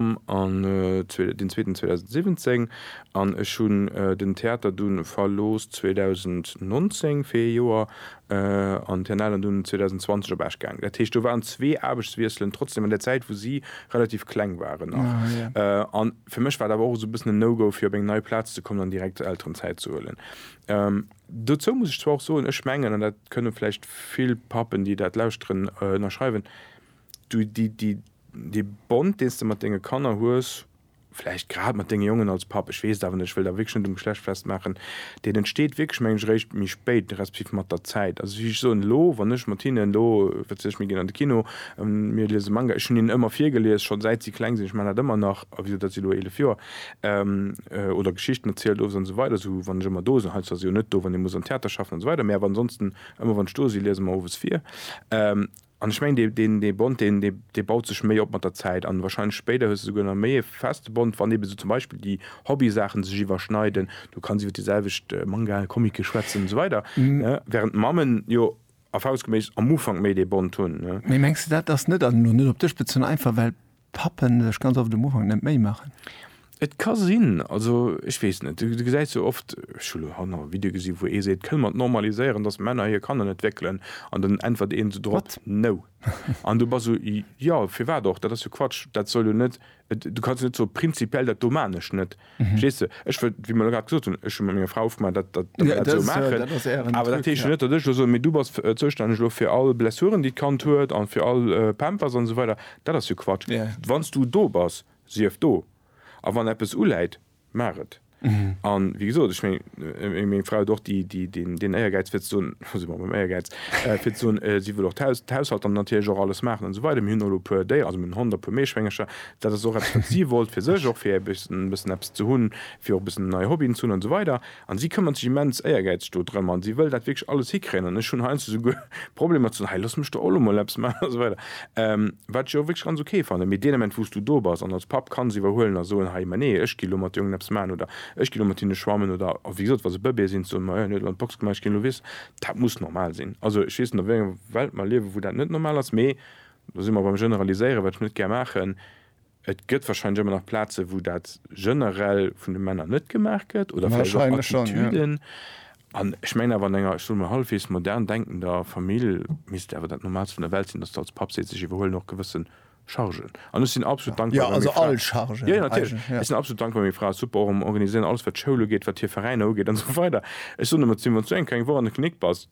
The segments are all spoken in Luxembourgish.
Programm an den zweeten 2017 an ech hunn den Theater dunn verlooss 2019 fir ee Joer an den alen dunn 2020 op Esch gaangen. Dat heescht do waren zwee Aarbechtswiesselen trotzdeem an der Zäit wou si relativ kleng waren nach an fir mech war et awer och esou e bëssen en No-Go fir op eng nei Plaz ze kommen an direkt Elterenzäit ze huelen. Dozou muss ech zwar och soen, ech mengen an dat kënne vläicht vill Pappen déi dat lauschteren ënnerschreiwen, Du, déi, déi, dee Bond, deen s de mat denge Kanner hues, vläicht grad mat denge Jongen als Papp, ech weess et awer net, ech wëll da wierklech net um Geschlecht festmaachen, deen entsteet wierklech, mengen ech, eréischt méi spéit, respektiv mat der Zäit. Also wéi ech soen, elo, wann ech mat hinnen, elo, wat weess ech, mir ginn an de Kino, mir liese Manga, ech hunn hinnen ëmmer virgelies, scho säit si kleng sinn, ech maachen dat ëmmer nach, a wéi dat si elo eelef Joer, oder Geschichten erzielt, owes an esou weider, esou wann ech ëmmer do sinn, haut zwar si jo net do, wann ee muss am Theater schaffen an esou weider, mä awer ansonsten ëmmer wann ech do si, liese mer owes vir. An ech mengen, dee, deen, dee Bond, deen, dee, dee baut sech méi op mat der Zäit. An wahrscheinlech spéider hues de souguer nach méi e feste Bond, wann eebe sou zum Beispill déi Hobbysaachen sech iwwerschneiden. Du kanns iwwer déi selwecht Mangaen, Comicen schwätzen an esou weider, ne? Während d'Mammen jo erfahrungsgemäß am Ufank méi dee Bond hunn, ne? Mee mengs de, dat ass net, an elo net op dech bezunn, einfach well Pappen sech ganz oft um Ufank net Méi maachen. Et ka sinn, also ech weess net, du gesäis jo oft, ech hu lo hanner e Video gesi wou ee seet, kënne mer et normaliséieren, datt Männer hir Kanner net wéckelen, an dann äntwert een esou drop, no. An du bass esou, jo, firwat och, dat ass jo Quatsch, dat soll jo net, du kanns jo net soe prinzipiell dat do maan ech net. Verstees du? Ech wëll, wéi mer elo grad gesot hunn, ech hu mat menger Fra ofgemaach, dat, dat, datt mer dat esou maachen. Awer dat heescht jo net, datt ech elo soen, Mee du bass zoustänneg elo fir all Blessuren, déi d'Kand huet an fir all Pampers an esou weider. Dat ass jo Quatsch. Wann s du do bass, sief do. A wann eppes uläit, maach et. A wéi gesot, ech mengen, meng Fra huet och déi, déi, deen, deen Éiergäiz, fir ze soen, do si mer beim Éiergäiz, fir ze soen, si wëll och d'Haus, d'Haushalt an natierlech och alles maachen an esou weider. Mir hunn och elo e puer Déieren, also mir hunn en Hond a e puer Meeschwéngercher, Dat ass och eppes, wat si wollt fir sech, och fir e bëssen eppes ze hunn, fir och e bëssen nei Hobbyen ze hunn an esou weider. An si këmmert sech immens éiergäizeg do drëm an si wëll dat wierklech alles hikréien. An ech hunn heiansdo souguer Problemer ze soen, hei looss mech do och elo mol eppes maachen an esou weider, wat ech jo och wierklech ganz ok fannen. Mee deen Ament, wou s du do bass an als Papp kanns iwwerhuelen a soen, hei, ma nee, ech ginn elo mat de Jongen eppes maachen oder ech ginn elo mat hinne schwammen oder wéi gesot, wa se Bëbeeë sinn, ze soen, ma jo, hien huet elo an d'Box gemaach, ech ginn elo, weess, dat muss normal sinn. Also ech weess net, a wéi enger Welt mer liewen, wou dat net normal ass, mee Do si mer beim Generaliséieren, wat ech net gär maachen. Et gëtt wahrscheinlech ëmmer nach Plazen, wou dat generell vun de Männer net gemaach gëtt oder vläicht och Attitüden. An ech mengen awer, an enger, ech soe mol, hallefweegs modern denkender Famill misst et awer dat Normaalst vun der Welt sinn, dass de als Papp sees, ech iwwerhuelen och gewësse Chargen. An ech sinn absolut dankbar, wa meng Fra. Jo, also all Chargen. Jo, jo, natierlech. Ech sinn absolut dankbar, wa meng Fra super och am Organiséieren, alles wat d'Schoul ugeet, wat hir Veräiner ugeet an esou weider. Ech soen ëmmer zu him, wann s du eng kleng Woch an der Klinik bass,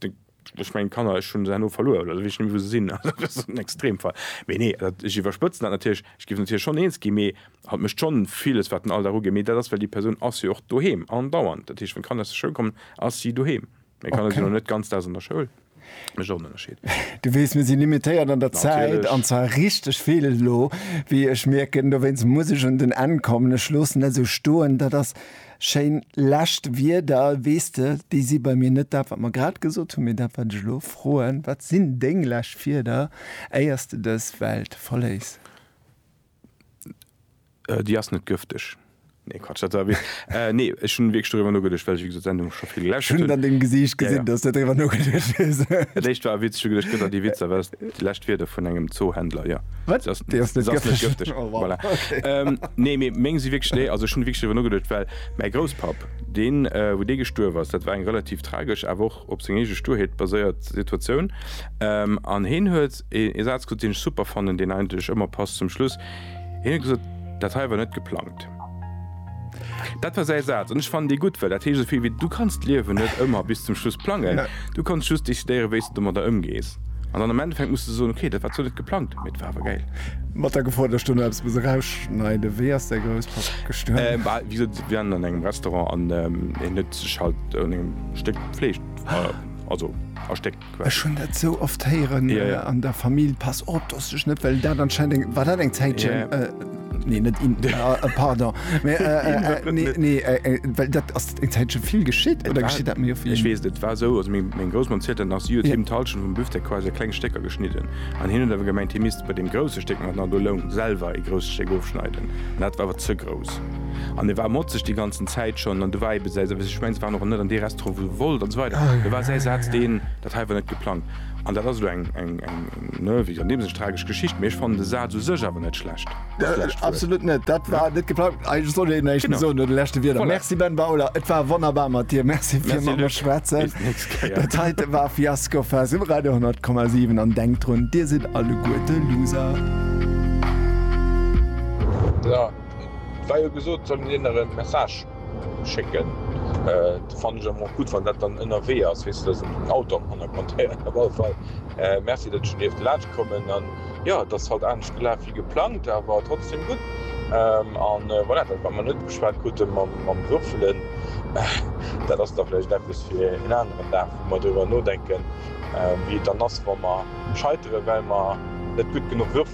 Ech mengen d'Kanner, ech hunn se herno verluer oder ech weess net méi wou se sinn, also dat ass en Extremfall. Mee nee, dat, ech iwwerspëtzen dat natierlech, ech géif natierlech schonn eens ginn, mee hatt mécht schonn villes wat den Alldag ugeet, mee dat ass well déi Persoun ass jo och doheem andauernd, dat heescht wann d'Kanner aus der Schoul kommen, ass si doheem. Meng Kanner sinn elo net ganz Daags an der Schoul, dat ass och en Ënnerscheed. Du weess, mir si limitéiert an der Zäit, an Natierlech. zwar richteg vill elo, wéi ech mierken. Dowéinst muss ech un den Enn kommen. Ech loossen dat esou stoen. Dat ass. Schéin lescht Wierder. Weess de, déi si bei mir net dat, wat mer grad gesot hunn, mee dat, wat ech elo froen, Wat sinn deng lescht Wierder, éier s de dës Welt verléiss? Déi ass net gëfteg. Nee, Quatsch, dat war e Witz. Nee, ech hunn wierklech doriwwer nogeduecht, well ech, wéi gesot, d'Sendung scho vill geläscht hunn. Ech hunn et an dengem Gesiicht gesinn, dass s de doriwwer nogeduecht hues. Dat éischt war e Witz. Ech hu geduecht, gëtt der déi Witzer? Déi lescht Wierder vun engem Zoohändler, jo. Wat? Déi ass net gëfteg. Oh wow, okay. Nee, mee meng si wierklech, nee, also ech hunn wierklech driwwer nogeduecht, well mäi Grousspapp, deen, wou dee gestuerf ass, dat war eng relativ tragesch, awer och op seng eege Sturheet baséiert Situatioun. An heen huet ee Saz gesot, deen ech super fannen, deen eigentlech ëmmer passt zum Schluss, hien huet gesot, Dat hei war net geplangt. Dat war säi Saz an ech fannen dee gutt, well dat heescht esou vill wéi, Du kanns d'Liewen net ëmmer bis zum Schluss plangen. Du kanns just decidéieren, wéi s de domadder ëmgees. An dann am Endeffekt muss de soen, Okay, dat war zwar net geplangt, mee et war awer gäil. Mat der Gefor, datt ech do nach eppes muss erausschneiden, Wéi ass däi Grousspapp gestuerwen? Bah, wéi gesot, si waren an engem Restaurant an hien huet sech halt un engem Stéck Fleesch, also a Stéck. Ech hun dat sou oft héieren an der Famill, pass op dass du dech net, well dat anscheinend eng, war dat eng Zäitchen? Nee net in pardon mee nee nee well dat ass eng Zäitche vill geschitt oder geschitt dat mir vill? Ech weess net, et war esou, also meng Groussmam zielt dat nach, si huet him d'Halschent vum Büftek quasi a kleng Stécker geschnidden an hien huet awer gemengt, hie misst bei deem grousse Stéck, mat nach elo Loung, selwer ee grousst Stéck ofschneiden an dat war awer ze grouss. an e war motzeg déi ganzen Zäit schonn an du war ebe säi Saz, ech mengen se waren och net an dee Restaurant wou e wollt an esou weider, do war säi Saz deen, dat hei war net geplangt. An dat ass elo eng, eng, eng, ne, wéi an deem Sënn tragesch Geschicht, mee ech fannen de Saz u sech awer net schlecht, dat lescht Wuert. Absolut net, dat war net geplangt. Eigentlech sollt een näischt méi soen no de leschte Wierder. Voilà. Merci Ben Bauler, et war wonnerbar mat dir. Merci fir mat mer schwätzen. Bis d'nächst Kéier. Dat heite war Fiasco Fest um Radio 100,7 an denkt drun, dir sidd alleguerte Loser. Et war jo gesot, et soll een hinner e Message schécken. Dat fannen ech awer och gutt, wann dat dann ënnerwee ass, weess de, datt een den Auto am Hannergrond héiert. Op alle Fall Merci, datt ech do dierft laanscht kommen. An jo, et ass haut anescht gelaf wéi geplangt, awer trotzdeem gutt. An voilà, dat wat mer net geschwat krute mam Würfelen, dat ass da vläicht eppes fir een aneren Dag, wou mer driwwer nodenken, wéi et dann ass, wa mer scheiteren, well mer net gutt genuch würfele.